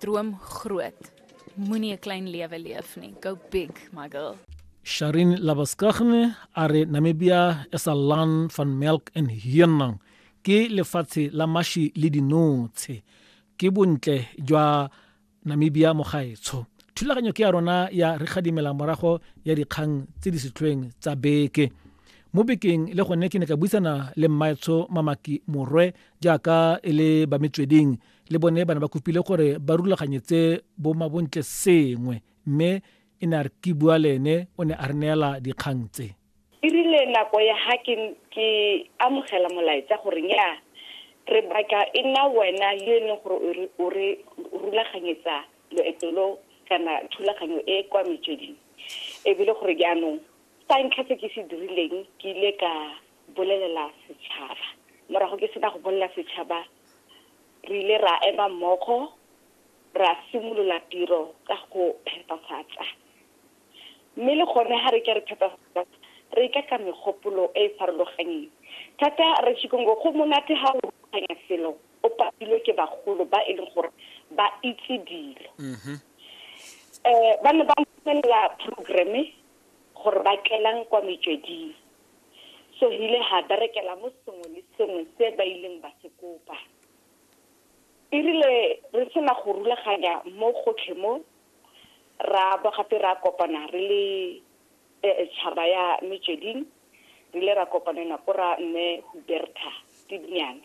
Droom groot. Moenie 'n klein lewe leef nie. Go big, my girl. Sharin Labaskagne are Namibia is a land van milk and hyenang. Ke lefatshe la mashi le dinotshe. Ke bontle jwa Namibia mo gaetsho. Thulaganyo ke ya rona ya re gadimela morago ya dikgang tse di setlhweng tsa beke. mo bekeng le gone ke ne ka buisana le mmaetsho mamaki morwe jaaka e le ba metsweding le bone bana ba kopile gore ba rulaganyetse bo mabontle sengwe mme e ne a re ke bua le ene o ne a re neela dikgang tse e rile nako ya ga ke ke amogela molaetsa gore nya re batla e nna wena yo e leng gore o re rulaganyetsa loeto lo kana thulaganyo e kwa metsweding ebile gore jaanong sa ntlha se ke se dirileng ke ile ka bolelela setšhaba morago ke sena go bolelela setšhaba re ile ra ema mmogo ra simolola tiro ka go phepafatsa mme le gone ga re ke re phepafatsa re ka ka megopolo e e farologanyeng thata re chikongo go monate ga o rulaganya selo o patilwe ke bagolo ba e leng gore ba itse dilo um mm-hmm. eh, ba ne ba ntelela programme gore ba tlelang kwa metsweding Sohile ha berekela mo sengwe le sengwe se ba ileng ba se kopa. E rile re sena go rulaganya mo gotlhe mo, ra bo gape ra kopana re le eh, tšhaba ya Metsweding, re ile ra kopanela ko ra mme Huberta Tibnyane.